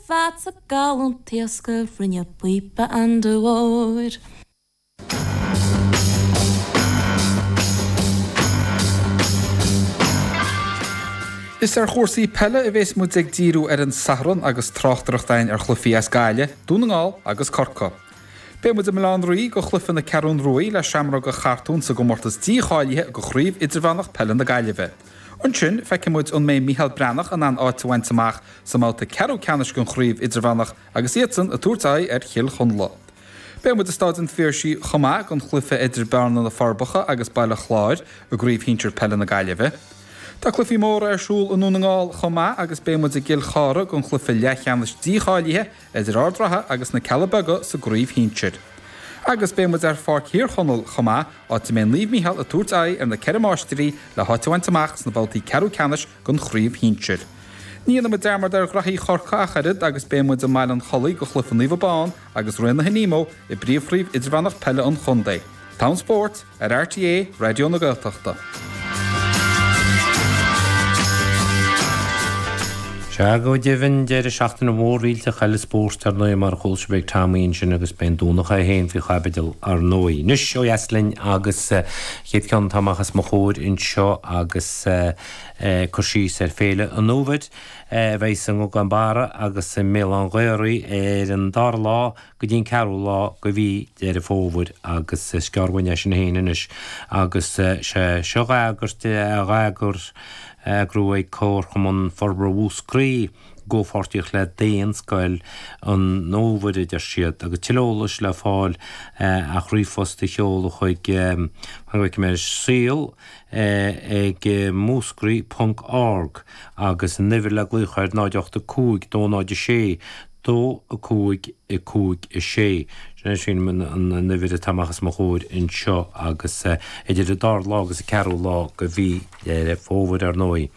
Fad sa ngalún taosctha rinne píopa den ór. Is ar chúrsaí peile a bheas muid ag díriú ar an Satharn agus tráchtaireacht againn ar chluichí as Gaille, Dún na nGall agus Corca. Beidh muid i mBaile Locha Riach do chluiche na Ceathrún Ruaidh le Seamróga Chartún sa gcomórtas dícháilithe de Chraobh Idirmheánach Peile na Gaillimhe. Ansin, feicfidh muid an mbeidh Micheál Breathnach in ann áit a bhaint amach sa mbabhta ceathrú ceannais den Chraobh Idirmheánach agus iadsan ag tabhairt aghaidh ar Chill Chonla. Beidh muid i Stáid an Phiarsaigh chomh maith don chluiche idir Bearna, Na Forbacha agus Baile Chláir i gCraobh Shinsir Peile na Gaillimhe. Tá cluichí móra ar siúl i nDún na nGall chomh maith agus beidh muid i gCill Chartha don chluiche leathcheannais dícháilithe idir Ard an Rátha agus na Cealla Beaga sa gcraobh shinsir. Agus beidh muid ar Pháirc Thír Chonaill chomh maith, áit a mbeidh Naomh Micheál ag tabhairt aghaidh ar na Ceithre Máistrí le háit a bhaint amach sna babhtaí ceathrú ceannais den chraobh shinsir. Ní dhéanfaidh muid dearmad ar ghnaithí Chorcaí ach oiread agus beidh muid i mBaile an Chollaigh do chluiche Naomh Abán agus Raonaithe Nemo i bpríomhchraobh idirmheánach peile an chontae. Togha an Spóirt. Ar RTÉ Raidió na Gaeltachta. Sea, go deimhin, deireadh seachtaine mhór eile ó thaobh spóirt, ar ndóigh, mar a chuala sibh ag Tomaí ansin agus beidh an Domhnach é féin faoi chaibidil, ar ndóigh. Anois, ó dheas linn agus an chéad cheann atá amach os mo chomhair anseo agus cur síos ar Fhéile an Fhómhair a bheidh sa nGugán Barra agus i mBéal an Ghaoraigh ar an dara lá, go dtí an ceathrú lá de mhí Dheireadh Fómhair agus is gearr uainn é sin féin anois agus sé seo dhá eagairt, dhá eagar, dhá eagrú ag Comharchumann Forbartha Mhúscraí i gcomhpháirtíocht le Daonscoil an Fhómhair, a deir siad, agus tuilleadh eolais le fáil ach ríomhphost a sheoladh chuig, fan go bhfeicfidh mé, saol ag múscraí ponc org agus an uimhir le glaoch air 085 206 dó, a cúig, a cúig, a sé. Sin é, sílim, an, an, an uimhir atá amach os mo chomhair anseo agus idir an dara lá agus an ceathrú lá de mhí Dheireadh Fómhair, ar ndóigh.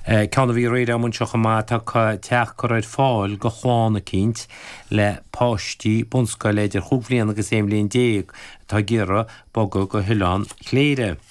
Ceann a bhí aréir a'm anseo chomh maith, tá ca, teach curtha ar fáil do chlann eicínt le páistí bunscoile idir chúig bhliana agus aon bhliain déag atá ag iarraidh bogadh go hOileán Chléire.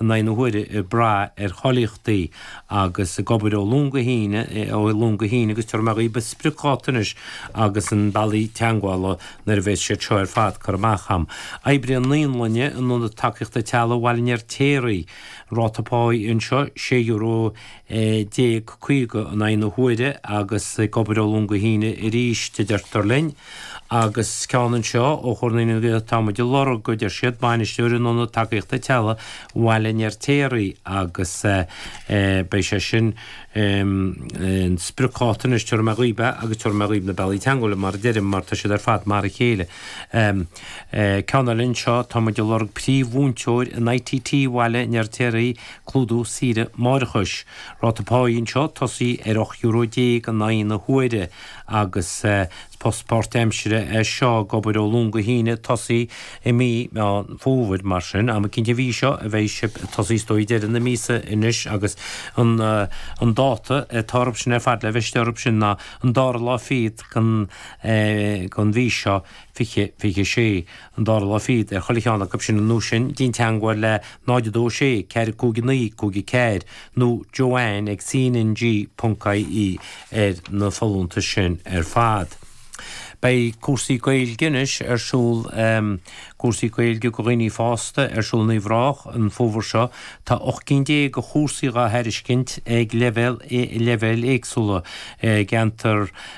in aghaidh na huaire ag brath ar cháilíochtaí agus ag obair ó Luan go hAoine, ó Luan go hAoine agus tabharfaidh mé dhaoibh an spriocdháta anois agus na bealaí teagmhála nuair a bheas siad seo ar fad curtha amach agam. Oibrí Naíolainne in Ionad Tacaíochta Teaghlaigh Bhaile an Fheirtéaraigh. Ráta páí anseo, sé euro. 1150 in aghaidh na huaire agus ag obair ó Luan go hAoine arís, a deirtear linn. Agus ceann anseo ó Chomhar Naíonraí na Gaeltachta, tá muid ag lorg, a deir siad, bainisteoir in Ionad Tacaíochta Teaghlaigh Bhaile an Fheirtéaraigh agus beidh sé sin an spriocdháta anois, tabharfaidh mé dhaoibh é agus tabharfaidh mé dhaoibh na bealaí teangmhála mar a deirim mar tá siad ar fad mar a chéile. Ceann eile anseo, tá muid ag lorg príomh-mhúinteoir in ITT Bhaile an Fheirtéaraigh, Clúdú saoire máithreachais. Ráta páí anseo ag tosaí ar 18 euro in aghaidh na huaire agus is post páirtaimsire é seo ag obair ó Luan go hAoine ag tosaí i mí Mheán Fómhair mar sin am eicínt an mhí seo a bheidh sibh ag tosaí is dóigh ag deireadh na míosa anois agus an dáta atá orthu sin ar fad le bheith istigh orthu sin ná an dara lá fichead den mhí seo, 2026. an dara lá fichead ar chuile cheann acu sin ar ndóigh, sin déan teangmháil le 0 2 6 4 5 9 5 4 nó Joanne ag cnng.ie ar na folúntais sin ar fad. Beidh cúrsaí Gaeilge anois ar siúl Cúrsaí Gaeilge do dhaoine fásta ar siúl in Uíbh Ráthach an fómhar seo. Tá ocht gcinn déag de chúrsaí dhá thairiscint ag leibhéal leibhéil éagsúla i gceantar.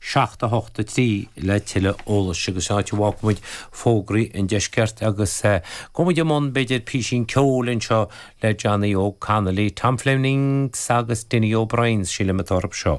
7, 8, 3 le tuilleadh eolais, agus sin áit a bhfágfaidh muid fógraí an deiscirt agus gabhfaidh muid i mbun, b'fhéidir, písín ceoil anseo le Johnny Óg Connolly, Tom Flemings agus Dinny O'Briens, sílim atá orthu seo.